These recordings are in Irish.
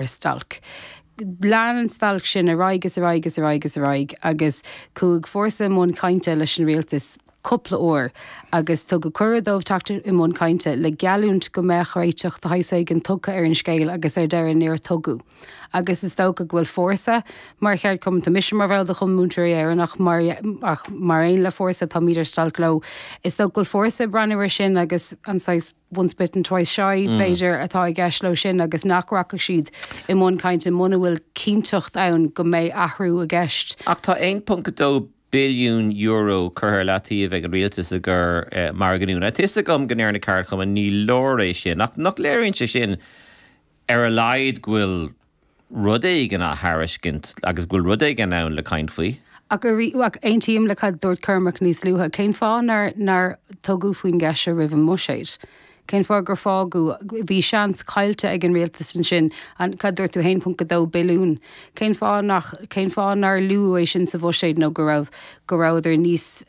ar stailc. Lean an stailc sin ar aghaidh is ar aghaidh is ar aghaidh is ar aghaidh agus chuaigh Fórsa i mbun cainte leis an Rialtas cúpla uair agus tugadh cuireadh dóibh teacht i mbun cainte le geallúint go mbeadh réiteach de shaghas éigin tugtha ar an scéal agus ar deireadh níor tugadh agus is dócha go bhfuil Fórsa mar cheardchumann, mise mar bhall de Chumann Múinteoirí Éireann ach mar aon le Fórsa táimid ar stailc leo, is dócha go bhfuil Fórsa ag breathnú ar sin agus an saghas. once bitten twice shy, b'fhéidir, atá i gceist leo sin agus nach rachadh siad i mbun cainte muna bhfuil cinnteacht ann go mbeidh athrú i gceist. Ach tá €1.2 billiún curtha ar leataobh ag an Rialtas i gcomhair margadh nua. Tá fhios agam go ndeir na ceardchumainn ní leor é sin ach nach léiríonn sé sin ar a laghad go bhfuil rud éigin á thairiscint agus go bhfuil rud éigin ann le caint faoi. Ach aontaím le cad dúirt Cormac níos luaithe, cén fáth nár tugadh faoin gceist seo roimh an mbuiséad? Cén fáth gur fágadh, bhí seans caillte ag an rialtas ansin, an, cad dúirt tú, 1.2 billiún? Cén fáth nach, cén fáth nár luadh é sin sa bhuiséad nó go raibh, go rabhadar níos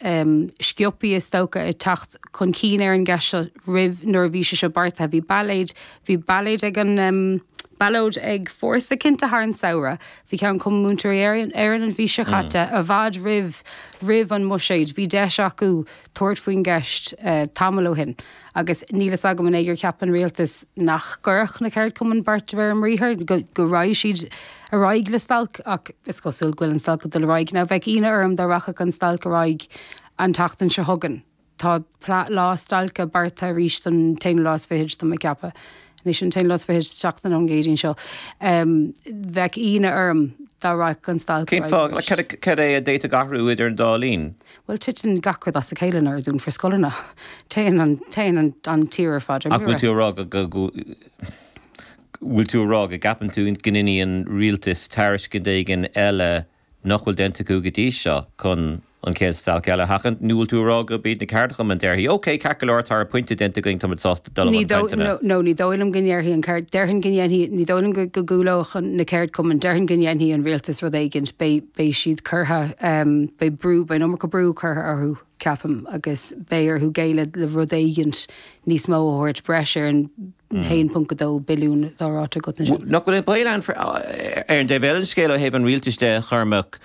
sciopaí is dócha ag teacht chun cinn ar an gceist seo roimh, nuair a bhí sé seo beartaithe? Bhí ballóid, Bhí ballóid ag an, ballóid ag Fórsa cinnte thar an samhradh. Bhí ceann Chumann Múinteoirí Éireann an mhí seo caite, i bhfad roimh roimh an mbuiséad. Bhí deis acu tabhairt faoin gceist tamall ó shin agus níl fhios agam an é gur cheap an Rialtas nach gcuirfeadh na ceardchumainn beart de réir a mbriathar, go raghaidh siad ar aghaidh le stailc ach is cosúil go bhfuil an stailc ag dul ar aghaidh. Now bheadh ionadh orm dá rachadh an stailc ar aghaidh an tseachtain seo chugainn. Tá lá stailce beartaithe arís don t-aonú lá is fichid, tá mé ag ceapadh. Anois an t-aonú lá is fichid seachtain ón gCéadaoin seo. Bheadh ionadh orm dá rachadh an stailc ar aghaidh arís. Cén fáth? Cad é a d'fhéadfadh athrú idir an dá linn? Bhuel, titeann gach rud as a chéile nuair a dúnfar scoileanna. Téann an tír ar fad ar mire. Ach bhfuil tú ag rá go, go, go, bhfuil tú ag rá go gceapann tú go ndéanfaidh an rialtas tairiscint éigin eile nach bhfuil déanta acu go dtí seo chun an chéad stailc eile a sheachaint, nó bhfuil tú ag rá gurb iad na ceardchumainn a déarfaidh, OK, ceart go leor, tá ár bpointe déanta againn, táimid sásta dul i mbun cainteanna? No, ní dóigh liom go ndéarfaidh an ceard, déarfainn go ndéanfaidh, ní dóigh liom go gcúlóidh na ceardchumainn, déarfainn go ndéanfaidh an rialtas rud éigin, beidh siad curtha, beidh brú, beidh an iomarca brú curtha orthu. ceapaim, agus beidh orthu géilleadh le rud éigint níos mó a thabhairt sa bhreis ar an 1.2 billiún atá ráite agat ansin. Nach bhfuil an baol ann, ar an dtaobh eile den scéal, ó thaobh an rialtais de, Chormac,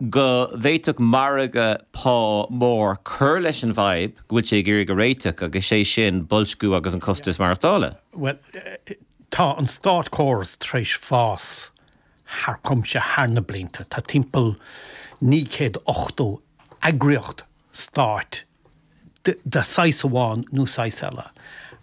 go bhféadfadh margadh pá mór cur leis an bhfadhb go bhfuil sé ag iarraidh a réiteach, agus é sin boilsciú agus an costas maireachtála? Bhuel, tá an státchóras tar éis fás thar cuimse thar na blianta. Tá timpeall naoi céad ochtó eagraíocht stáit de shaghas amháin nó saghas eile,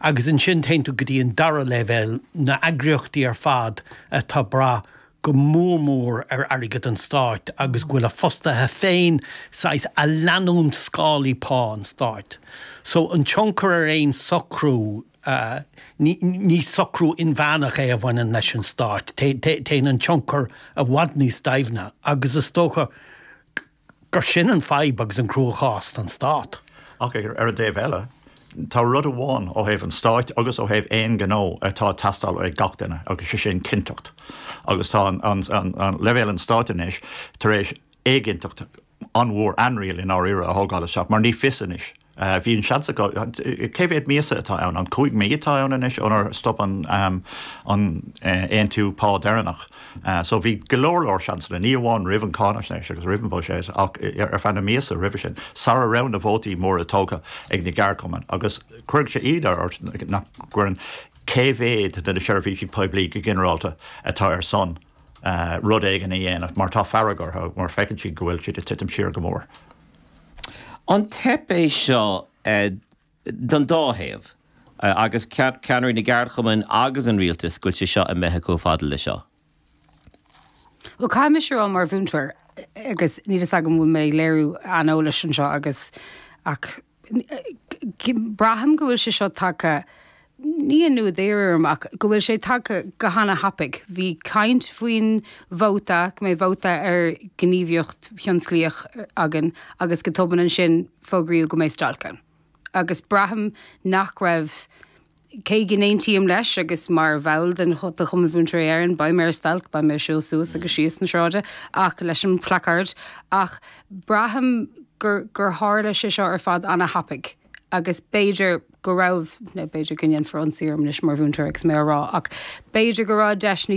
agus ansin téann tú go dtí an dara leibhéal, na heagraíochtaí ar fad atá ag brath go mór mór ar airgead an stáit agus go bhfuil a fostaithe féin saghas ag leanúint scálaí pá an stáit. So an tionchar ar aon socrú. a. Ní socrú inmheánach é a bhaineann leis an stát. Téann an tionchar i bhfad níos doimhne agus is dócha gur sin an fadhb agus an chruachás don stát. Ach ar an dtaobh eile, tá rud amháin ó thaobh an stáit agus ó thaobh aon ghnó atá ag teastáil ó gach duine agus sé sin cinnteacht. Agus tá leibhéal an stáit anois tar éis éiginnteacht a. an-mhór, anriail i ndáiríre, a thógáil isteach mar ní fios anois. Bhí an seans acu, cé mhéad míosa atá ann, an cúig mí atá ann anois ónar stop an aontú pá deireanach so bhí go leor leor seansanna, ní amháin roimh an cáinaisnéis agus roimh an bhuiséad ach ar feadh na míosa roimhe sin, sara raibh na vótaí móra tógtha ag na ceardchumainn agus cuirfidh sé íonadh ort nach gcuireann cé mhéad de na seirbhísí poiblí go ginearálta atá ar son rud éigin a dhéanamh mar tá fearg orthu mar feiceann siad go bhfuil siad ag titim siar go mór. An teip é seo don dá thaobh agus ceannairí na gceardchumann agus an rialtas go bhfuil sé seo imithe chomh fad le seo? Bhuel caithfidh mise a rá mar mhúinteoir agus níl fhios agam an bhfuil mé ag léiriú aineolais anseo ach Braithim go bhfuil sé seo tagtha, aniar aduaidh orm, ach go bhfuil sé tagtha go hana thapaidh. Bhí caint faoin vóta, go mbeidh vóta ar ghníomhaíocht thionsclaíoch againn agus go tobann ansin fógraíodh go mbeidh stailc ann. Agus braithim nach raibh cé go n-aontaím leis agus mar bhall den de Chumann Mhúinteoirí Éireann, beidh mé ar stailc, beidh mé ag siúl suas agus síos na sráide ach leis an placard ach braithim gur gur tharla sé seo ar fad ana-thapaidh agus b'fhéidir go raibh, b'fhéidir go ndéanfar ionsaí orm anois mar mhúinteoir agus mé á rá ach b'fhéidir go raibh deis níos